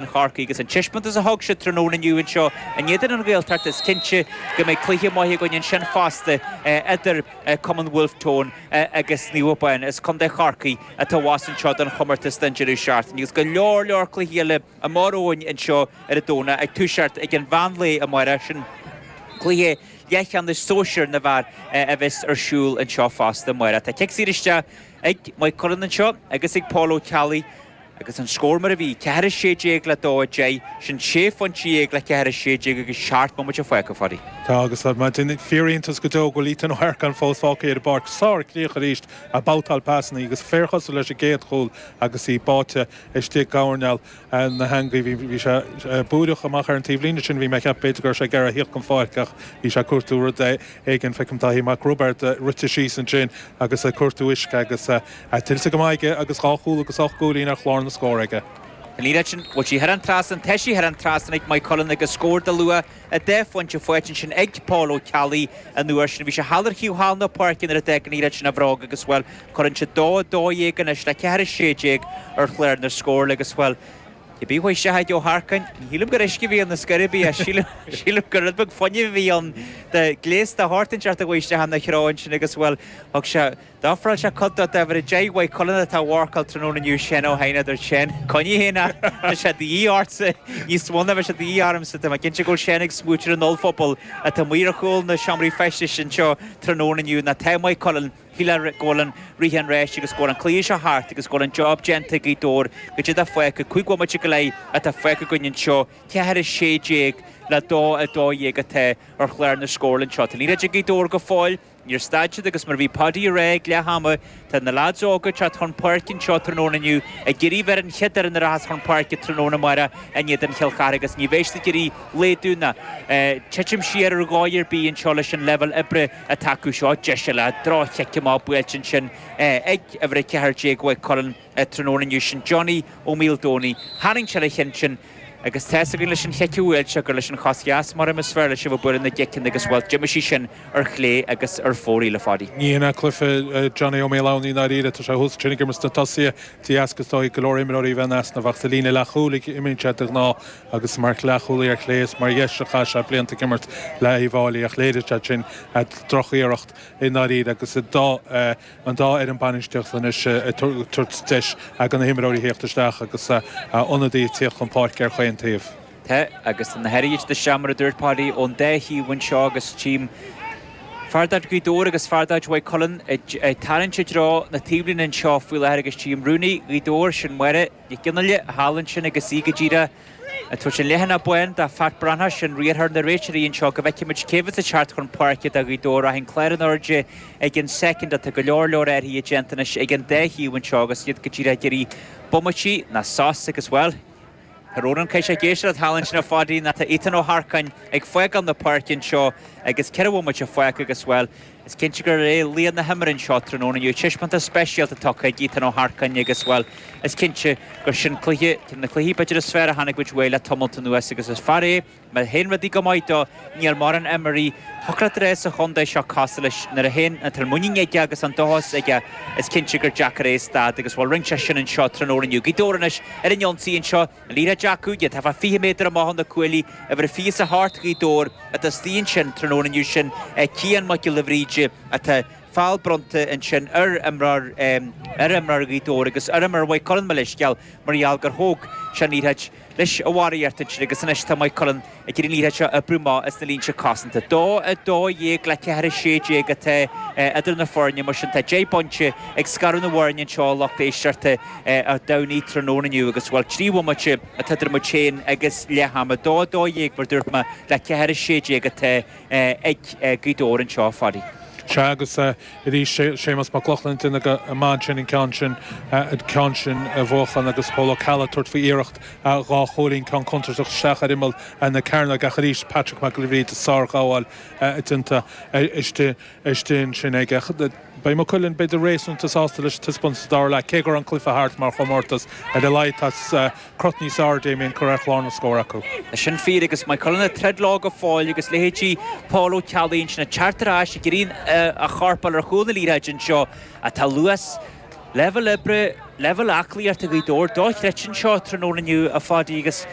Chorcaí agus an taispeántas a thug siad tráthnóna inniu anseo in éadan an Ghaeltacht is cinnte go mbeidh cluiche maith againn ansin fosta idir Cumann Wolfe Tone agus Naomh Abán. as Contae Chorcaí atá abhus anseo don chomórtas don deireadh seachtaine agus go leor leor cluichí eile amach romhainn anseo ar an Domhnach ag toiseacht ag an mheán lae amárach, sin cluiche leathcheannais sóisear na bhfear a bheas ar siúl anseo fosta amárach. Tá cic saor isteach ag Maigh Cuilinn anseo agus ag Paul Ó Ceallaigh. Agus an scór mar a bhí, ceathair a sé déag le dó a deich, sin sé phointe dhéag le ceathair a sé déag agus seacht mbomaite fágtha againn. Tá, agus ar maidin. Fíoriontas go deo go bhfuil Ethan Ó hEarcáin fós fágtha ar an bpáirc. Sárchríoch arís ag babhtáil pasanna agus fíorchosúil leis an gcéad chúl agus í báite istigh i gcoirnéal na heangaí. Bhí sé ag búireach amach ar an taobhlíne sin, bhí mé ag ceapadh b'fhéidir go raibh sé ag iarraidh thíocht den pháirc ach bhí sé ag cuartú rud éigin. Feicim Dáithí Mac Roibeaird rite síos ansin agus ag cuartú uisce agus. A tuillte go maith aige agus dhá chúl agus ocht gcúilín ar chlár na scór aige. An liathróid sin, bhuel tá sí thar an trasnán, tá sí thar an trasnán ag Maigh Cuilinn agus scór de luach dhá phointe faighte ansin ag Paul Ó Ceallaigh an uair sin. Bhí sé thall ar thaobh thall na páirce nuair a d'fhág an liathróid sin a bhróg agus, bhuel, cuireann siad dó a dó dhéag anois le ceathair a sé déag ar chlár na scór agus, bhuel, cibé uaidh Ethan Ó hEarcáin, ní shílim gur uisce a bhí ann ar scor ar bith, sílim gur rud beag fuinnimh a bhí ann, gléasta thart ansin thart uaidh isteach ina threo ansin agus, bhuel, thug sé. D'ofráil sé cuid de d'uimhir a deich Mhaigh Cuilinn atá á mharcáil tráthnóna inniu sin, ó shin, a deir Seán. Coinnigh féin é, tá sé de dhíth ortsa níos mó ná bheadh sé de dhíth ormsa. Tá mé cinnte go bhfuil Seán ag smaoitiú ar an ollphuball atá amuigh ar chúl na seomraí feistis anseo tráthnóna inniu, ná taobh Mhaigh Cuilinn, shílfeá go bhfuil an rith ar ais agus go bhfuil an cluiche seo thart agus go bhfuil an job déanta ag Gaoth Dobhair goidé atá fágtha. Cúig bhomaite go leith atá fágtha againn anseo, ceathair a sé déag le dó a dó dhéag atá ar chlár na scórála anseo. Tá an liathróid ag Gaoth Dobhair go fóill, Níor stad siad agus mar a bhí Paudie a rá ag leath ama, tá na leaids óga ag teacht chun páirce anseo tráthnóna inniu ag iarraidh bheith ar an chéad fhoireann a rachas chun páirce tráthnóna amáireach in éadan Chill Charthaigh agus ní bheidh siad ag iarraidh laghdú ná titim siar ar dhóigh ar bith anseo leis an leibhéal oibre atá acu seo. Deis eile droch-chic amach buailte ansin ag uimhir 14 Mhaigh Cuilinn. Tráthnóna inniu sin Johnny Ó Maoldomhnaigh, tharraing sé ar an cheann sin, agus tá's againn leis an chic a bhuail sé gur leis an chos dheas mar is fearr leis a bheith ag bualadh na gciceanna agus bhuel, d'imigh sí sin ar chlé agus ar fóraoil, a Pháidí. Ní hin é cluife Johnny Ó Maoldomhnaigh i ndáiríre, tá sé thuas tráthnóna ag imirt sna tosaithe de dheasca, is dóigh, go leor imreoirí a bheith in easnamh, ach sa líne leathchúil a imríonn sé de ghnáth agus mar leathchúlaí ar chlé is mar dheis a chaith sé blianta ag imirt le Uíbh Fháilí ach léirigh sé sin droch-iarracht i ndáiríre agus i an dá fhoireann bainistíochta anois ag tabhairt deis do na himreoirí a thíocht isteach agus ionadaí ag tíocht chun páirce ar chaon taobh. Tá agus tá na hathruithe seo, mar a dúirt Páidí, ón dá thaobh anseo agus chím fear de chuid Ghaoth Dobhair agus fear de chuid Mhaigh Cuilinn ag tarraingt i dtreo na taobhlíne anseo faoi láthair agus chím rúnaí Ghaoth Dobhair, sin Máire Nic Fhionnghaile thall ansin agus í go díreach. Ag tabhairt an leathanach bán do Phat Breathnach sin riarthóir na réiteoirí anseo go bhfeicfimid cé bheas ag teacht chun páirce do Ghaoth Dobhair ach an clár in airde ag an soicind atá go leor leor athraithe déanta anois ag an dá thaobh anseo agus iad go díreach ag iarraidh bomaití ná sos agus bhuel Tá rún an caise ag éisteacht thall ansin a Pháidí nó tá Ethan Ó hEarcáin ag fágáil na páirce anseo agus ceithre bhomaite fágtha agus bhuel Is cinnte gurb é laoch na himeartha anseo tráthnóna inniu, taispeántas speisialta tugtha ag Ethan Ó hEarcáin agus, bhuel, is cinnte gur sin cluiche, de na cluichí, b'fhéidir, is fearr a chonaic muid uaidh le tamalt anuas agus is fear é, má théann rudaí go maith dó, níl mórán imreoirí shocráite é sa chontae seo, cosúil leis, nuair a théann, nuair atá an mhuinín aige agus an dóchas aige, is cinnte gur deacair é a stad agus, bhuel, rinne sé sin anseo tráthnóna inniu. Gaoth Dobhair anois ar an ionsaí anseo. An liathróid aige, tá fá 20 méadar amach ó na cuaillí uimhir a 28 do Ghaoth Dobhair atá istigh ansin tráthnóna inniu sin é Cian Mac Giolla Bhríde atá feall bronnta ansin ar imreoir ar imreoir Ghaoth Dobhair agus ar imreoir Mhaigh Cuilinn mo leithscéal mar gheall gur thóg sé an liathróid leis a Mhary Arthur ansin agus anois tá Maigh Cuilinn ag iarraidh í seo oibriú amach as na línte cosanta. Dó, 12 le 4, 16 atá idir na foirne. Mar sin, tá deich bpointe ag scaradh na bhfoirne anseo a lucht éisteachta ar Domhnaigh tráthnóna inniu agus, bhuel, trí bhomaite atá idir muid féin agus leath ama. Dó, 12 mar dúirt mé, le 4, 16 atá. ag Gaoth Dobhair anseo, a Phadaí. Sea, agus arís, Séamus Mac Lochlainn, déanamh go maith ansin, an ceann sin, an ceann sin a bhuachan agus Pól Ó Ceallaigh ag tabhairt faoi iarracht dhá chúilín, ceann contúirteach isteach ar imeall na cearnóige ach arís Patrick Mac Giolla Bhríde, sárghabháil déanta istigh ansin aige. Beidh Maigh Cuilinn b'fhéidir réasúnta sásta leis an taispeántas sa dara leath, cé go raibh an cluiche thart mar chomórtas, ar a laghad tá crot níos fearr a mbíonn cur ar chlár na scór acu. Tá sin fíor agus Maigh Cuilinn ag troid leo go fóill agus leithéidí Paul Ó Ceallaigh ansin ag teacht ar ais, ag iarraidh a chorp a fháil ar chúl na liathróide anseo. Tá luas, leibhéal oibre, leibhéal aclaíochta Ghaoth Dobhair dochreidte anseo tráthnóna inniu, a Phadaí, agus.